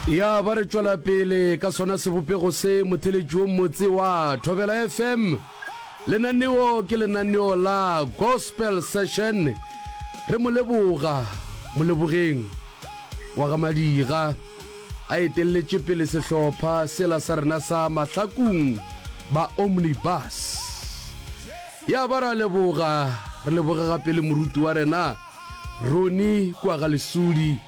Ya ba re tšwela pele ka sona sebopego se, motheletši wo motse wa Thobela FM. Lenaneo ke lenaneo la Gospel Session. Re mo leboga Molebogeng wa ga Madiga a etelletše pele sehlopha sela sa rena sa Mahlakung ba Omnibus. Ya ba ra leboga, re leboge gape le moruti wa rena Ronnie kua ga Lesudi.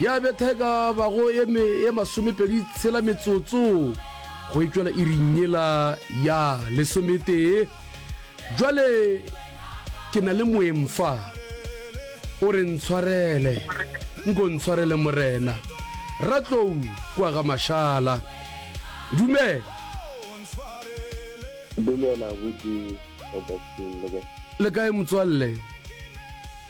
Ya betha e ka bago e me e masomepedi tshela metsotso go e tšwela iring yela ya lesometee. Jwale ke na le moeng fa. O re ntshwarele, nko ntshwarele Morena. Ratlou kua ga Mashala. Dumela. Dumela, Abuti Robertson, le kae? Le kae motswalle?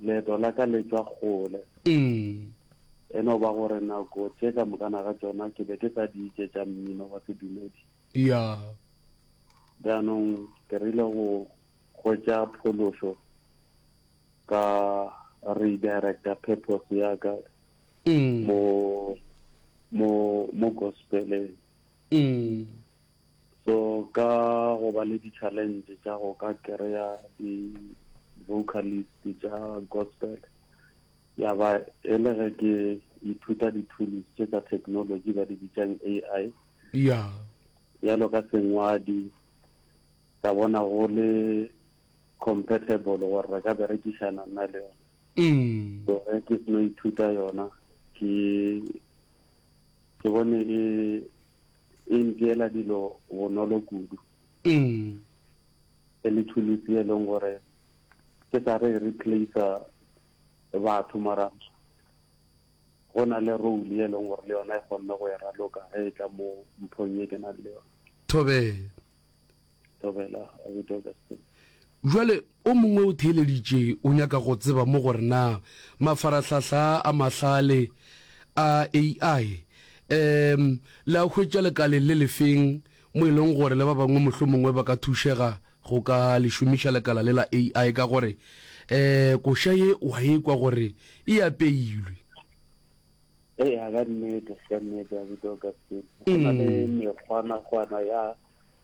Leeto la ka le tšwa kgole. E no ba gore nako tše ka mokana ga tšona ke be ke sa di itše tša mmino wa sedumedi. Jaanong ke rile go hwetša phološo ka redirecta purpose ya ka mo gospeleng. So ka go ba le di-challenge tša go ka kry-a di-vocalist tša gospel ya ba e le ge ke ithuta di-tools tše tsa technology ba di bitsang AI ya yalo ka sengwadi ka bona go le compatible gore re ka berekišana nna le yona mm. so ge ke seno ithuta yona ke ke bone e e ntšeela dilo bonolo kudu. E le thulusi e leng gore ke sa re e replacer batho mara go na le role e leng gore le yona e kgonne go e raloka ge e tla mo mphong e ke nang le yona. Thobela. Tobela Abuti Augustine. Jwale o mongwe o theeleditše o nyaka go tseba mo gore na mafarahlahla a mahlale a AI um le a hwetša lekaleng le lefeng mo e leng gore le ba bangwe mohlomongwe ba ka thušega go ka le šomiša lekala le la AI ka gore um koša ye wa e kwa gore e apeilwe. Eya ka nnete, ka nnete abuti Augustine. Go na le mm. mekgwanakgwana ya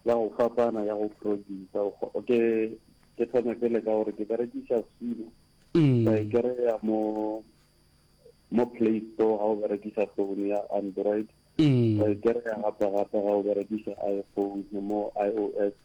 ya go fapana ya go producer. Ke ke thome pele ka gore ke berekisa Sino. Mm. Ka e kry-a mo mo Play Store ga o berekisa phone ya Android. Ka mm. e kry-a gape gape ga o berekisa iPhone mo iOS.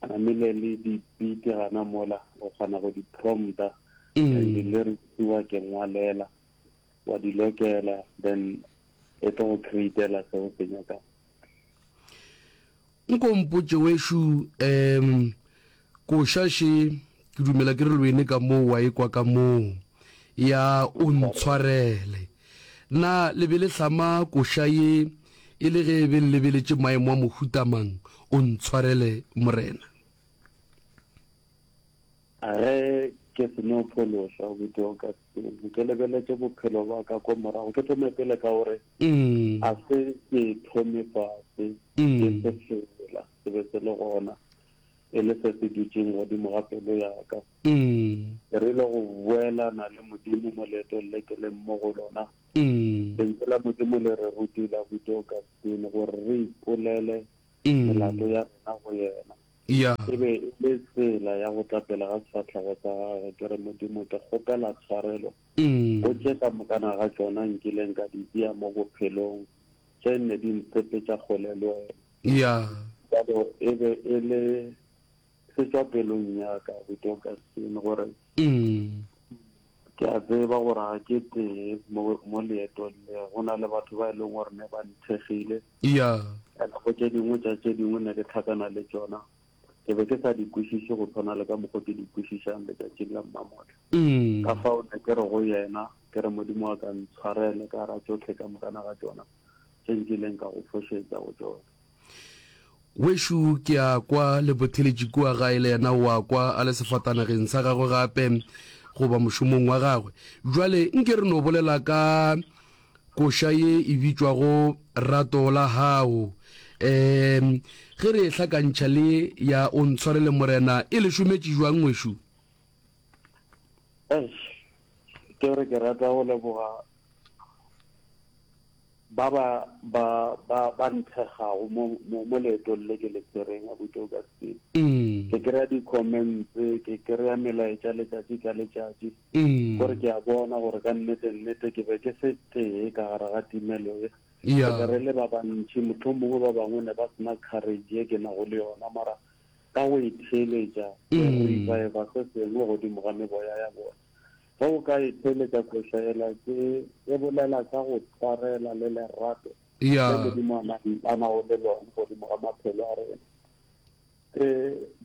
a namile le dipiti gana mola o kgona go di prompta and di lyrics wa ke ngwalela wa di lokela then e tlo go createla se o se nyakang nkompotše wešo um koša še ke dumela ke re lwene ka moo wa ekwa ka moo ya o ntshwarele Na le be le hlama koša ye e le ge be le lebeletše maemo a mohuta mang? O ntshwarele, Morena. A ge ke se no phološwa, obuti Augustine, ke lebeletše bophelo bwa ka kwa morago. Ke thome pele ka gore a se ke thome fase, ke se fela se be se le gona. e le se se dutšeng godimo ga pelo ya ka. Ke rile go boelana le Modimo mo leetong le ke leng mo go lona, Lentšu la Modimo le re rutile, abuti Augustine, gore re ipolele melato ya rena go Yena. E be e le tsela ya go tla pele ga sefahlego sa Gagwe, ke re, Modimo, ke kgopela tshwarelo go tše ka mokana ga tšona nkileng ka di bea mo bophelong, tše nne di ntsepetša kgole le Wena. Ya. Bjalo e be e le se tšwa pelong ya ka, Ruth Augustine, gore ke a tseba gore ga ke tee mo, mo leetong le. Go na le batho ba e leng gore ne ba nthekgile. Ya. And go tše dingwe tša tše dingwe ne ke tlhakana le tšona, ke be ke sa di kwešiše go tshwana le ka mokgwa ke di kwešišang letšatšing la mmamotla. Ka fao ne ke re go yena, ke re, Modimo wa ka, ntshwarele ka gara tšohle ka mokana ga tšona. tše nkileng ka go fošetša go tšona. Wešu ke a kwa, le botheletše kua gae le yena o a kwa, a le sefatanageng sa gagwe gape, goba mošomong wa gagwe. Bjale, nke re no bolela ka koša ye e bitšwago Rato la Gago. Um, ge re e hlakantšha le ya O Ntshwarele Morena, e le šometše jwang, ngwešu? Eish, ke re ke rata go leboga Ba ba ba ba ba nthegago mo mo mo leetong le ke le tsereng, abuti Augustine. Ke kry-a di-comments, ke kry-a melaetša letšatši ka letšatši, gore ke a bona gore ka nnete nnete ke be ke se tee ka gare ga timelo ye. Re be re le ba bantši, mohlomongwe ba bangwe ne ba sena courage ye ke nago le yona, mara ka go itheeletša, ke reviva se sengwe godimo ga meboya ya bona. Ge o ka e theeletša kwešaela tše, e bolela ka go tshwarela le lerato le Modimo a nang a nago le lone godimo ga maphelo a rena. Ke,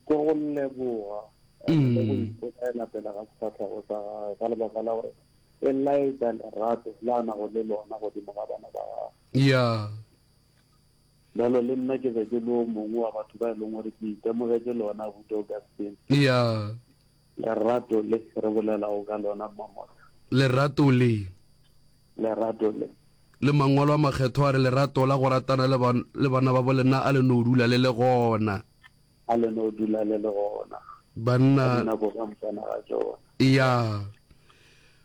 ke go leboga and le go ipolaela pele ga sefahlego sa Gagwe ka lebaka la gore e laetša lerato le a nago le lona godimo ga bana ba Gagwe. Yeah. Bjale le nna ke be ke le o mongwe wa batho ba e leng gore ke itemogetše lona, abuti Augustine. Eya. Lerato le re bolelago ka lona, Mma Morgan. Lerato le. Lerato le. Le Mangwalo a Makgethwa a re, Lerato la go ratana le, le bana babo lena a le no dula le le gona. A le no dula le le gona. Banna. Ka dinako ka motsana ga tšona. Eya.